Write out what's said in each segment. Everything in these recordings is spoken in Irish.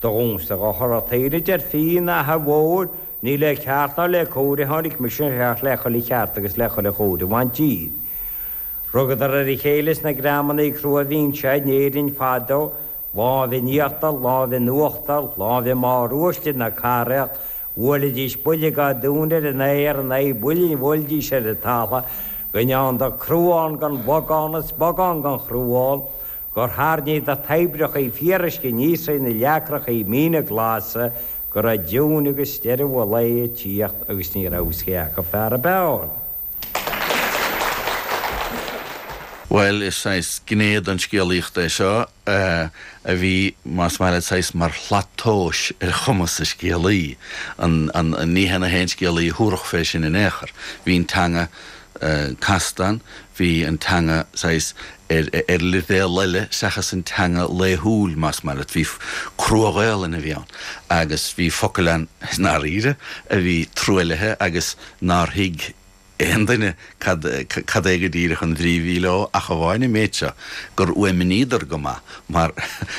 Do dhúmsa dhochar a' taoille deir Fíon na h-Ath Mhóir, Ní le ceart ná le cóir a tháinig mise ach le chuile cheart agus le chuile chóir a bhaint díot. Rugadar ar a chéile sna greamannaí crua a bhíonn sé in Éirinn fadó, lámh i n-íochtar, lámh i n-uachtar, lámh i mbarr uaisle na caraíocht, bhuailidís buille dhá dtóin ar an aer in aghaidh buille a bhuailidís ar an talamh, go ndearnadar cruán den bhogán is bogán den chruán, gur thairníodar toibreachaí fíoruisce aníos thrí na leacrachaí míne glasa go raibh nóin agus deireadh an lae ag tíocht agus ní raibh a fhios cé acu fear ab fhearr. Bhuel, is saghas gné den scéalaíocht é seo a bhí, más maith leat, saghas mar shlat tomhais ar chumas an scéalaí. Ní hé na haon scéalaí a thabharfadh fé sin in aon chor. Bhí an teanga. casta, bhí an teanga saghas ar leibhéal eile seachas an teanga laethúil, más maith leat. Bhí crua-Ghaolainn a bhí ann agus bhí focail ann i ndáiríre a bhí truaillithe agus nár thuig aon duine cad é go díreach an bhrí a bhí leo ach amháin an méid seo, gur fhuaimníodar go maith. mar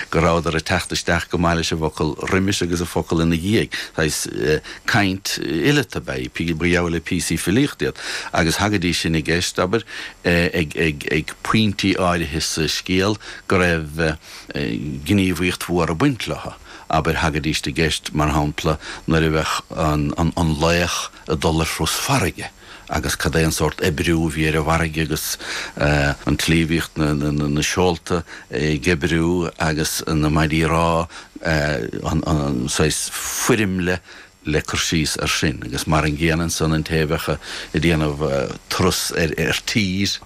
go rabhadar ag teacht isteach go maith leis an bhfocal roimis agus an focal ina dhiaidh, saghas caint fhileata ab ea í, ba gheall le píosaí filíochta iad, agus thagaidís sin i gceist, abair, ag pointí áirithe sa scéal go raibh gníomhaíocht mhór ag baint leo, abair, thagaidíst i gceist, mar shampla, nuair a bheadh an laoch ag dul ar thuras farraige. agus cad é an sórt oibriú a bhí ar an bhfarraige agus an tslí a bhíodh na seolta ag oibriú agus na maidí rámha saghas foirmle le cur síos air sin agus mar an gcéanna ansan an té a bheadh ag déanamh turas ar tír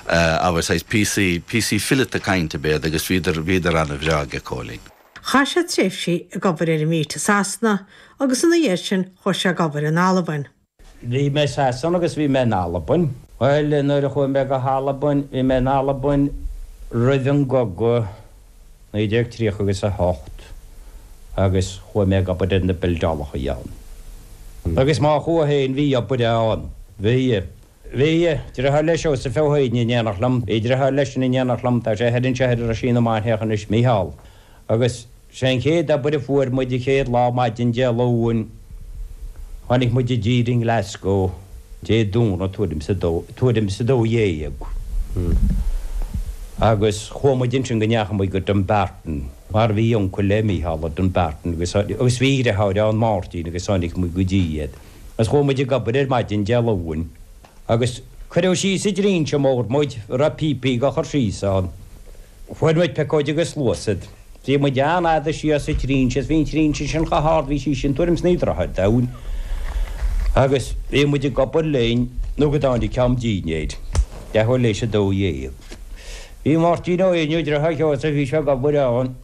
abair saghas píosaí, píosaí fileata cainte ab ea iad agus bhíodar, bhíodar an-bhreá aige Cóilín. Chaith sé tréimhsí ag obair ar an bhflít i Sasana agus ina dhiaidh sin chuaigh sé ag obair in Albain. Bhí mé i Sasana agus bhí mé in Albain. Bhuel, nuair a chuaigh mé go hAlbain, bhí mé in Albain roimh an gcogadh, 1930 agus 8, agus chuaigh mé ag obair ar na bildeálacha ann. Agus má chuaigh féin, bhí obair ann. Bhí. Bhí. Dritheár le Seosamh Ó hÉanaí in éineacht liom. Bhí dritheár leisean in éineacht liom, tá sé thoir anseo ar Roisín na Mainiach anois, Micheál. Agus. Sé an chéad obair a fuair muid an chéad lá, maidin Dé Luain, tháinig muid i dtír i nGlasgow Dé Domhnaigh tuairim is a dó, tuairim is a dó dhéag, agus chuaigh muid ansin go ndeachaigh muid go Dumbarton, mar bhí uncail le Mícheál i Dumbarton agus, agus bhí a dhriotháir ann, Máirtín, agus tháinig muid go dtí iad. Agus chuaigh muid ag obair ar maidin Dé Luain. agus cuireadh síos i dtrínse mór muid a raibh píopaí á chur síos ann. Fuair muid piocóid agus sluasaid. Bhí muid an fhad síos sa trínse is bhí an trínse sin chomh hard, bhí sí sin tuairim 's naoi dtroithe domhain, agus bhíodh muid ag obair linn nó go dtáinig am dinnéir, leathuair léis a dó dhéag. Bhí Máirtín Éinniú, deartháir Joe, is bhí sé ag obair ann.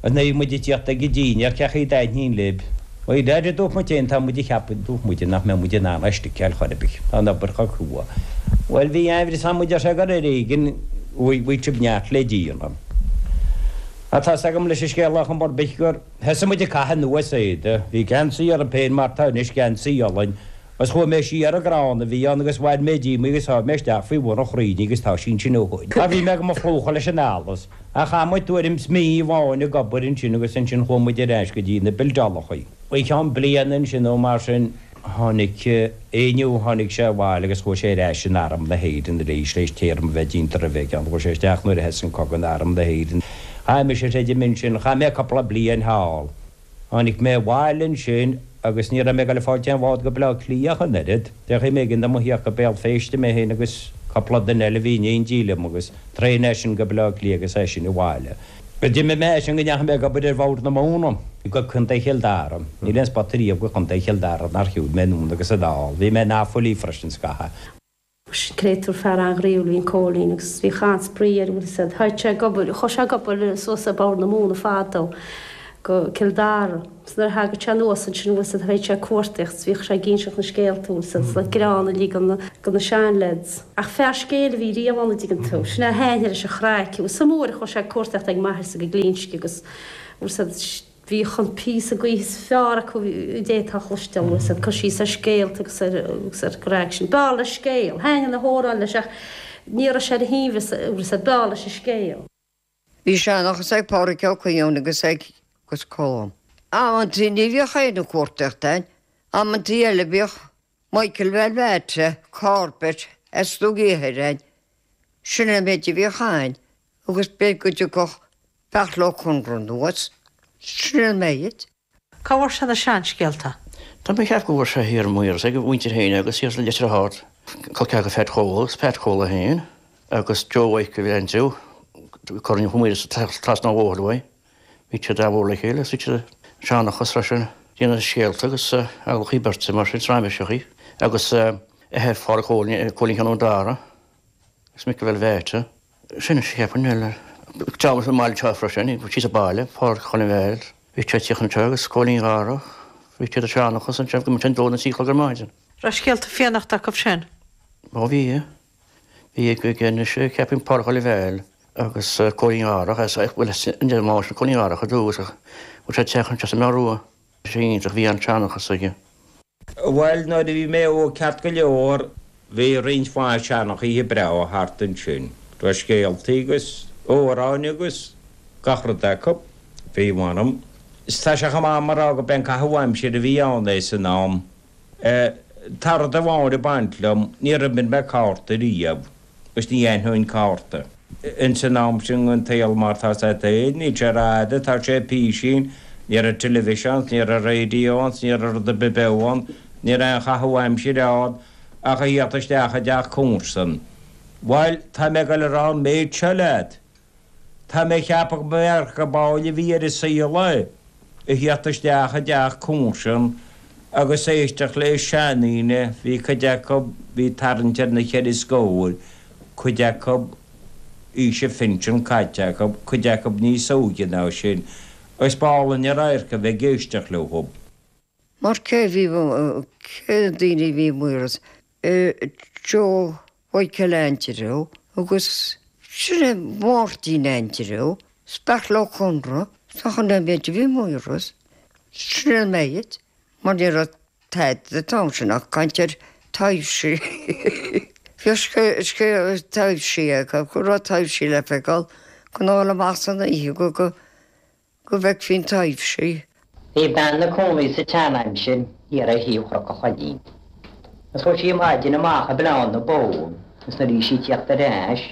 Is nuair a bhí muid ag tíocht ag an dinnéar, cén chaoi a dtaithníonn lib. Ó is léir dúirt muid féin, tá muid ag ceapadh dúirt muide nach mbeadh muid in ann é a sticeáil chor ar bith. Tá an obair chomh crua. Bhuel, bhí aimhréidh samhail muid ar sé gur ar éigean bhí sibh neart le díoladh. Ach tá's agam leis an scéal lá chomh marbh gur thosaigh muid ag caitheamh anuas éide. Bhí geansaí orm féin mar tá anois geansaí olainn Agus chuaigh mé siar ag crann a bhí ann agus bhain mé díom í agus sháigh mé isteach faoi bhun an chrainn í agus tá sí ansin ó shin. Bhí mé go mo phlúchadh leis an allas, ach chaith muid tuairim is mí amháin ag obair ansin agus ansin chuaigh muid ar ais go dtí na bildeálacha. I gceann bliana ansin nó mar sin, tháinig Éinniú, tháinig sé abhaile agus chuaigh sé ar ais in arm na hÉireann arís tar éis téarma a bheith déanta roimhe aige, chuaigh sé isteach nuair a thosaigh an cogadh in arm na hÉireann. Chaith mise, chreidim, ansin, chaith mé cupla bliain thall. Tháinig mé abhaile ansin agus ní raibh mé ag dul ag fáilt aon bhád go Baile Átha Cliath ach an oiread. B'éigean dom a thíocht go Béal Féirste, mé féin agus cupla duine eile a bhí in éindí liom, agus traein as sin go Baile Átha Cliath agus as sin abhaile. D'imigh mé as sin go ndeachaigh mé ag obair ar Bhord na Móna go Contae Chill Dara. Níl aon spota riamh go Contae Chill Dara nár shiúil mé anonn agus anall. Bhí mé in Offaly freisin scaitheamh. Sin créatúr fear an-ghnaíúil a bhí in Cóilín agus bhí an-spraoi air an bhfuil a fhios agat. Tháinig sé ag obair, chuaigh sé ag obair suas ar Bord na Móna fadó go Cill Dara. Is nuair a thagadh sé anuas ansin an bhfuil a fhios agat théadh sé ag cuartaíocht agus bhíodh sé ag inseacht na scéalta an bhfuil a fhios agat is an greann uilig go na go na seanleaids. Ach fear scéil a bhí riamh ann an dtuigeann tú, sin é a thaithin leis an chraic. Is iomaí uair a chuaigh sé ag cuartaíocht ag m'athair-sa go Glinsce agus an bhfuil a fhios agat Bhíodh an píosa d'oíche is fearr acu a d'fhéadfá a chloisteáil, agus ag cur síos ar scéalta agus ar an gcraic sin. B'fhearr leis scéal. Thaithin na hamhráin leis ach ní raibh sé ar a shuaimhneas agus b'fhearr leis an scéal. Bhí seanchas ag Pádhraic Ó Coinneáin agus ag Colm. Amanntaí ní bhíodh aon chuartaíocht ann, amanntaí eile bhíodh. Michael Verwaalte, Corbett, as Dumhaigh Ithir ann, sin an méid a bhíodh ann agus b'fhéidir go dtiocfadh Beartla Ó Conchúir anuas, sin an méid. Cá bhfuair sé na seanscéalta? Tá mé a cheap go bhfuair sé thiar i Maoras ag a mhuintir fhéin agus thiar i Leitir Ard, col ceathar Pheaid Chóil agus Peaid Chóil fhéin agus Joe Mhaidhc a bhí ag aint Joe, Corn Uí Mhaorais atá trasna an bhóthair uaidh. Bhí siad amhail le chéile, is idir sheanchas leis an déanamh scéalta agus amhlachaí beirte mar sin, raiméiseachaí, agus a athair Phádraig Chóilín, Cóilín Sheáin Dharach, agus mic a bheith leáite. Sin a cheapann mé. Ag teacht i mbaile anseo freisin, síos an baile, Pádraig Choilm Mhichíl, bhí sé ag tíocht anseo agus Cóilín Dharach, bhí siad ag seanchas ansin go mbíodh sé a dó nó a trí a chlog ar maidin. Raibh scéalta fiannaíocht acu sin? Ó bhí. Bhí i gcuimhne anois, cheapfainn, Pádraig Choilm Mhichíl agus Cóilín Dharach, as a bhfuil de mháistir Cóilín Dharach i dtús, ach bhfuil sé ag teacht as an mbeár rua. Bhí sé iontach, bhí an-seanchas aige. Bhail nuair a bhí mé óg ceart go leor, bhí roinnt mhaith seanchaithe breátha thart ansin. Raibh scéaltaí agus amhráin agus gach rud acu, bhí, mh'anam. Is tá sé chomh maith mar gurb é an caitheamh aimsire a bhí ann, é san am. Tá rud amháin ag baint liom, níor imir mé cártaí riamh, agus ní aithneoinn cárta. Ins an am sin den tsaol mar atá a fhios agat féin, níl sé ar a fhad atá sé, písín, ní raibh televisions, ní raibh radios, ní raibh rud ar bith beo ann, ní raibh aon chaitheamh aimsire ann ach a theacht isteach i dteach comharsan. Bhail, tá mé ag goil a rá an méid seo leat, Tá mé ag ceapadh go mb'é an rud ab áille a bhí ar a saol é a theacht isteach i dteach comharsan agus éisteacht le seandaoine, bhí cuid acu, bhí tarraingt ar na cheithre scóir, cuid acu, aois an phinsin caite acu, cuid acu níos óige ná sin, agus b'álainn an radharc a bheith ag éisteacht leofa. Mar cé a bhí, cé na daoine a bhí i Maoras? Joe. Mhícil Aindriú agus sin é Máirtín Aindriú, is Beairtle Ó Conaire ná an méid a bhí i Maoras, sin é an méid, mar ní raibh tada an t-am sin ach caint ar thaibhsí. Bhíodh scéal taibhsí acu go raibh taibhsí le feiceáil, gan a ghoil amach san oíche go. go bhfeicfeá an taibhse. Bhí bean 'na cónaí sa tseanaimsir thiar ar thaobh Chnoc a' Choinín. Is chuaidh sí maidin amach ag bleán na bó is nuair a bhí sí ag tíocht ar ais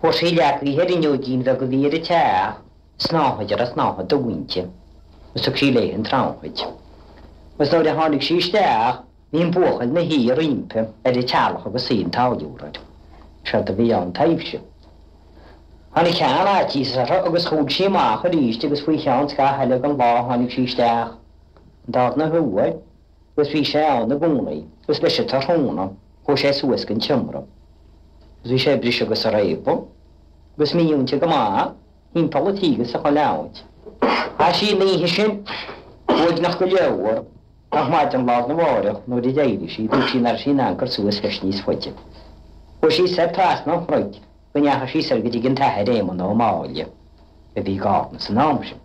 fuair sí leagthaí ar fhuinneoigín bheag a bhí ar a teach, Snáthaid a raibh snáithe dubh inti, is thug sí léithe an tsnáthaid. Is nuair a tháinig sí isteach. Bhí an buachaill 'na shuí roimpi ar a teallach agus suí an táilliúra air. Séard a bhí ann taidhbhse. Tháinig cineál faitís uirthi agus chuaidh sí amach arís agus faoi cheann scaitheamh eile den lá tháinig sí isteach. An darna huair agus bhí sé ann i gcónaí agus leis an tráthnóna chuaidh sé suas gon tseomra agus bhí sé a briseadh agus a réabadh agus mímhúinte go maith thimpeall a tíghe is chuile áit. Chaith sí an oíche sin uaigneach go leor. ach maidin lá arna mháireach nuair a d'éirigh sí, thuig sí nach raibh sí in ann cur suas leis níos faide. Chuaigh sí soir trasna an chnoic go ndeachaigh sí soir go dtí an tAthair Éamonn Ó Máille, a bhí i gCarna san am sin,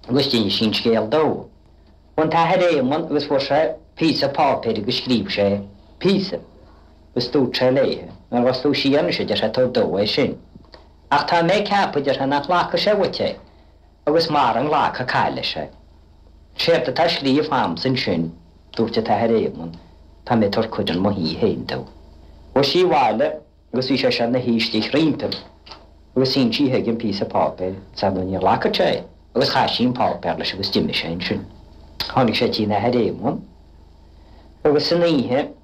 agus d'inis sí an scéal dó. Chuaigh an tAthair Éamonn agus fuair sé píosa páipéir agus scríobh sé píosa agus dúirt sé léithe, Nuair a ghabhfas tú siar anois, a deir sé, tabhair dó é sin. Ach tá mé ag ceapadh, a deir sé, nach nglacfaidh sé uait é. agus mara nglacfaidh caith leis é. Séard atá scríofa a'msa ansin, dúirt an tAthair Éamonn, tá mé ag tabhairt cuireadh chun mo thí fhéin dó. Chuaigh sí abhaile agus bhí sé seo ina shuí istigh roimpi agus shín sí chuige an píosa páipéir agus ar ndóigh ní ghlacfadh sé é agus chaith sí an páipéar leis agus d'imigh sé ansin. Tháinig sé tigh an Athair Éamonn agus san oíche,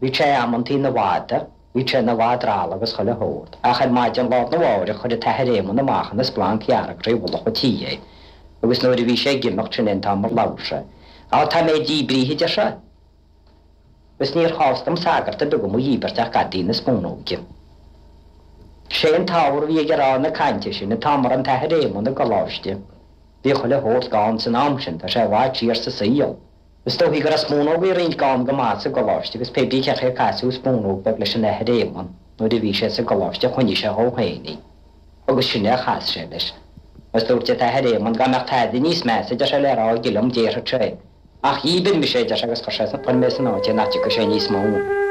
Bhí sé amantaí 'na mhadadh, bhí sé 'na mhadra alla agus chuile shórt, ach ar maidin lá arna mháireach chuir an tAthair Éamonn amach ina splanc dhearg trí mhullach a' tí é, agus nuair a bhí sé ag imeacht, sin é an t-am ar labhair sé. Á, tá mé díbrithe, adeir sé, agus níor chás dom sagart ar bith go mo dhíbirt ach gadaí na spúnóige. 'Sé an t-ábhar a bhí aige ag rá na cainte sin, an t-am a raibh an tAthair Éamonn i gcoláiste, bhí chuile shórt gann san am sin, tá sé i bhfad siar sa saol, Is dóichí go raibh spúnógaí roinnt gann go maith sa gcoláiste agus pé brí cén chaoi ar casadh spúnóg bheag leis an Athair Éamonn nuair a bhí sé sa gcoláiste choinnigh sé dhó féin í agus sin é a chas sé leis agus dúirt an tAthair Éamonn 'Dá mbeadh tada níos measa, deir sé, le rá aige liom, déarfadh sé é. Ach dhíbir mise é, deir sé, agus chuir mé san áit é nach dtiocfaidh sé níos mó.